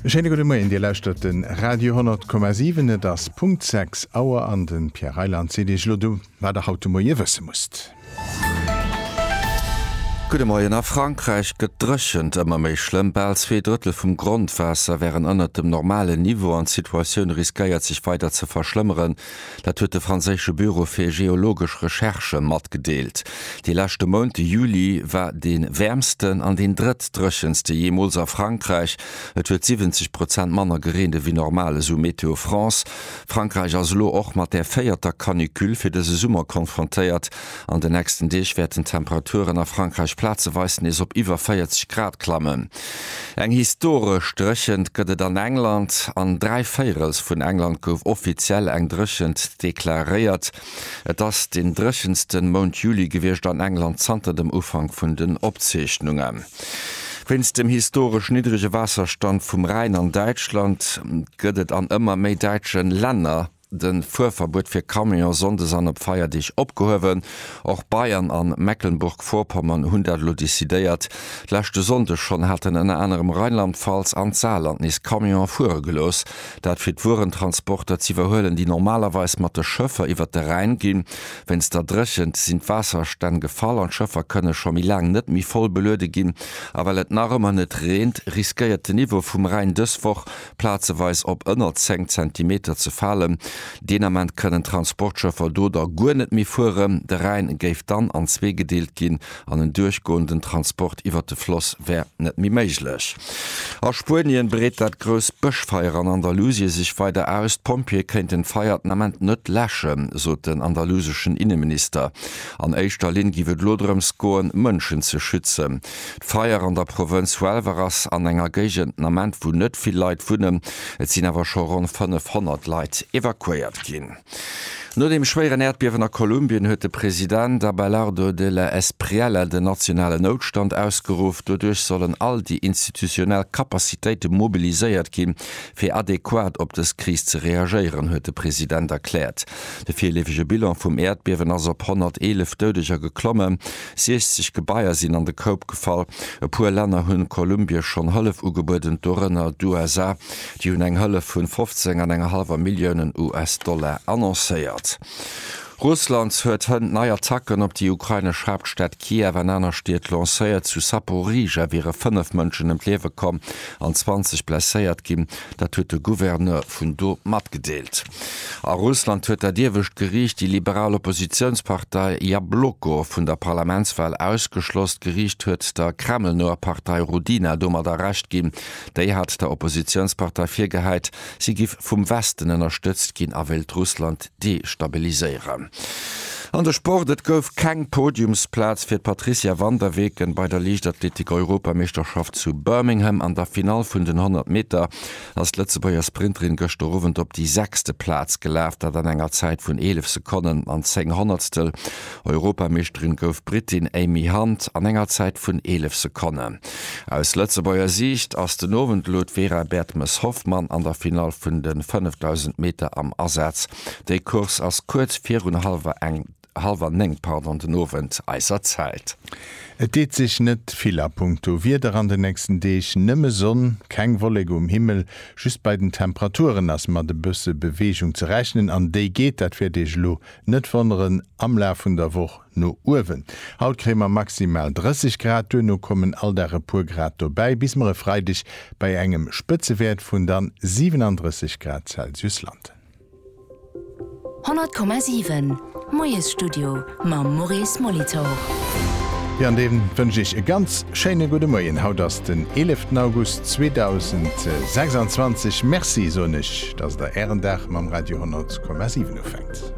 E schéine gudde Moien, Dir lauschtert de Radio 10,7. Et ass Punkt 6 Auer an de Pierre Reyland seet Iech elo du, wat Der haut de Moie wësse musst. Gudde Moien, A Frankräich gëtt d'Dréchent ëmmer méi schlëmm. Bal zwee Drëttel vum Grondwaasser wären ënnert dem normalen Niveau an d'Situatioun riskéiert sech weider ze verschlëmmeren. Dat huet de franséische Büro fir geologesch Recherchë matgedeelt. De leschte Mount, de Juli, war dee wäermsten an deen drëttdréchenste jeemools a Frankräich. Et huet 70 Prozent manner gereent ewéi normal, esou Météo France. Frankräich ass elo och mat der véierter Canicule fir dëse Summer konfrontéiert. An de nächsten Deeg wäerten d'Temperaturen a Frankräich plazeweis nees op iwwer 40 Grad klammen. Eng historesch Dréchent gëtt et an England. An dräi Véirels vun England gouf offiziell eng Dréchent deklaréiert. Et ass den dréchensten Mount Juli gewiescht an England zanter dem Ufank vun den Opzeechnungen. Wéinst dem historesch niddrege Waasserstand vum Rhäin an Däitschland gëtt et an ëmmer méi däitsche Länner De Fuerverbuet fir Camionen sonndes an op Feierdeeg opgehuewen. Och Bayern an Mecklenburg-Vorpommern hunn dat elo decidéiert. Leschte Sonnde schonn haten ënner anerem Rheinland-Pfalz an d'Saarland nees Camionen fuere gelooss. Dat fir d'Wuerentransporter z'iwwerhuelen, déi normalerweis mat de Schëffer iwwert de Rhäin ginn. Wéinst der Dréchent sinn d'Waasserstänn gefall an d'Schëffer kënne scho méi laang net méi voll beluede ginn. A well et nach ëmmer net reent, riskéiert den Niveau vum Rhäin dës Woch plazeweis op ënner 10 Zentimeter ze falen. Deen Ament kënnen d'Transportschëffer do da guer net méi fueren. De Rhäin géif dann an zwee gedeelt ginn an en duerchgoenden Transport iwwert de Floss wär net méi méiglech. A Spuenien breet dat grousst Bëschfeier an Andalusie sech weider aus. D'Pompjeeë kéinten d'Feier den Ament net läschen, sot den andaluseschen Inneminister. An éischter Linn géif et elo drëms goen, Mënschen ze schützen. D'Feier an der Provënz Huelva ass an enger Géigend Ament, wou net vill Leit wunnen. Et sinn awer scho ronn 500 Leit evakuéiert ginn. No dem schwéieren Äerdbiewen a Kolumbien huet de President Abelardo de la Espriella den nationalen Noutstand ausgeruff. Doduerch sollen all déi institutionell Capacitéite mobiliséiert ginn, fir adequat op dës Kris ze reagéieren, huet de President erkläert. De virleefege Bilan vum Äerdbiewen ass op 111 Doudeger geklommen. 60 Gebaier sinn an de Koup gefall. E puer Länner hunn Kolumbie schonn Hëllef ugebueden, dorënner d'USA. Déi hunn eng Hëllef vun 15 an enger hallwer Milliounen US-Dollar annoncéiert. Russland huet hënt nei Attacken op déi ukrainesch Haaptstad Kiew an aner Stied lancéiert. Zu Saporizhia wiere 5 Mënschen ëm d'Liewe komm an 20 blesséiert ginn. Dat huet de Gouverneur vun do matgedeelt. A Russland huet dat iewescht Geriicht déi liberal Oppositiounspartei Jabloko vun der Parlamentswal ausgeschloss. D'Geriicht huet der kremlnoer Partei Rudina domadder Recht ginn. Déi hat der Oppositiounspartei virgehäit, si giff vum Westen ënnerstëtzt ginn a wéilt Russland destabiliséieren. An de Sport, Et gouf keng Podiumsplaz fir d'Patricia van der Weken bei der Liichtathletik-Europameeschterschaft zu Birmingham. An der Finall vun den 100 Meter ass d'Lëtzebuerger Sprinterin gëschter Owend op déi sechste Plaz gelaf, dat an enger Zäit vun 11 Sekonnen an 10 Honnertstel. Europameeschterin gouf d'Britin Amy Hunt an enger Zäit vun 11 Sekonnen. Aus Lëtzebuerger Siicht ass den Owend elo d'Vera Bertmes-Hoffmann an der Finall vun de 5000 Meter am Asaz. Déi Course ass kuerz virun halwer néng den Owend eiser Zäit. Et deet sech net vill a punkto Wieder an den nächsten Deeg. Nëmme Sonn, keng Wolleke um Himmel. Just bei den Temperaturen ass mat e bësse Beweegung ze rechnen an déi geet, dat wäert Iech elo net wonneren, am Laf vun der Woch no uewen. Haut kréie mer maximal 30 Grad, duerno kommen all Dag e puer Grad dobäi, bis mer e Freideg bei engem Spëtzewäert vun dann 37 Grad Celsius landen. 100,7 Moiesstudio mam Maurice Molitor. Jo, an dee wënscht Iech e ganz schéine gudde Moien. Haut ass den 11 August 2026. Merci soen ech, dass Der Ären Dag mam Radio 100,7 ufänkt.